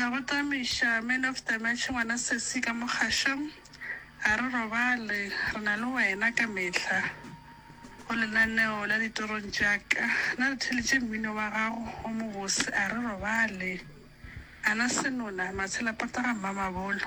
A gotamiša Man of the Match ngwana sesi ka mo kgašong, a re robale, re na le wena ka mehla go lenaneo la ditorong tša ka. Na re theletše mmino wa gago o mobose, a re robale, a na senona, matshela pota ga mmamabolo.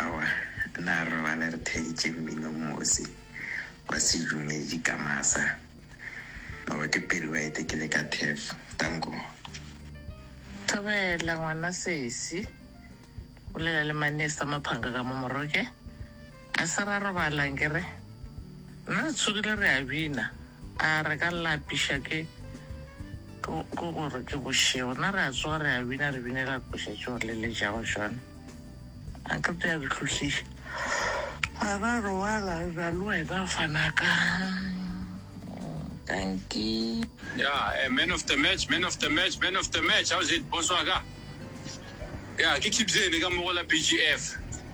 Aowa, na re robala re theeditše mmino mose wa sedumedi ka masa? Aowa, ke Perry White ke le ka turf. Tanko. Thobela, ngwana sesi, bolela le Manesta Maphanga ka mo moroke. A se ra robala nke re? Nna re tsogile re a bina. A re ka lapiša ke, ke, ke gore ke bošego. Nna re a tsoga re a bina, re binela koša tšeo re leletšago tšona. A qeta ya re hlohliša. A ra robala re na le wena fana ka, ka nke. Ya, eh, man of the match, man of the match, man of the match, how's it, boss wa ka? Ya, ke Kibzeni ka mo go la BGF.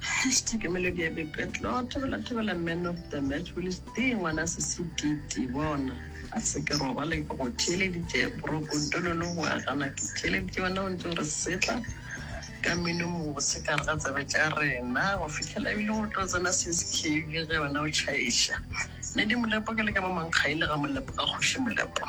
Hashtag Melody ya Boipetlo, Thobela Thobela Man of the Match, Willies Dee ngwana sesi Titi bona. A se ke robale ke go theeleditše Bro Kontololo go agana ke theeleditše wena o ntse o re setla ka mmino mobose ka re ga tsebe tša rena go fihlela ebile go tlo tsena seskv ge wena o tšhaiša Lady Molepo ke le ka mo mankgaile ga Molepo ka kgoši Molepo.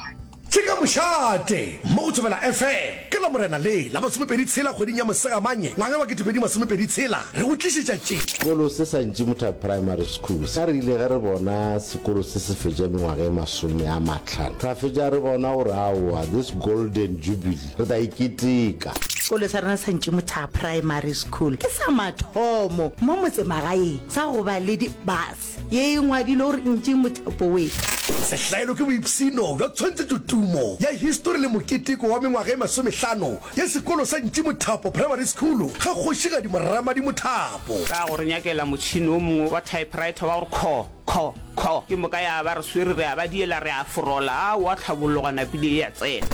Tše ka mošate mo go Thobela FM. Ka Lamorena le la masomepedi tshela kgweding ya Mosegamanye ngwaga wa ketepedi masomepedi tshela re go tlišetša tše. Sekolo se sa Ntšimutha Primary School sa re ile ge re bona sekolo se se fetša mengwaga e masome a matlhano ra fetša re bona gore aowa this golden jubilee re tla e keteka. Sekolo sa rena sa Ntšimutha Primary School ke sa mathomo mo motsemagaeng sa go ba le di bus. Ye e ngwadilwe gore ntši mothapo we. Sehlaelo ke boipshino bja tshwantshetšotumo ya histori le moketeko wa mengwaga e masomehlano ya sekolo sa Ntši Mothapo Primary School ga Kgošigadi Moramadi Mothapo. Ka go re nyakela motšhini o mongwe wa typewriter wa go re kho, kho, kho, ke moka ya ba re swere re a ba diela re a forola, a oa tlhabologa napile ye ya tsena.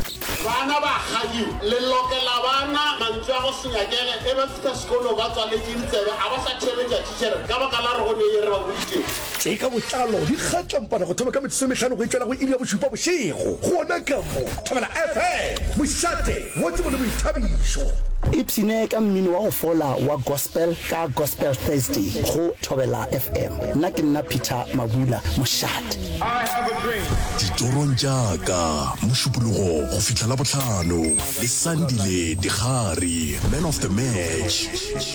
Bana ba kgadi le lokela bana mantswe a go se nyakele e ba fihla sekolo ba tswaletše ditsebe a ba sa thebe tšatši. Ker, Ka baka la re go ne ye re ba boditšego. Tše ka botlalo di kgatlampana go thoma ka metsotso e mehlano go etšwela go iri ya bošupa bošego. Gona ka mo, Thobela FM, mošate, modimo le boithabišo. Ipshine ka mmino wa go fola wa Gospel ka Gospel Thursday go Thobela FM. Nna ke nna Peter Mabula, mošate. Ditorong tša ka, Mošupologo go fihla Labohlano, le Sandile Digari, Man of the Match.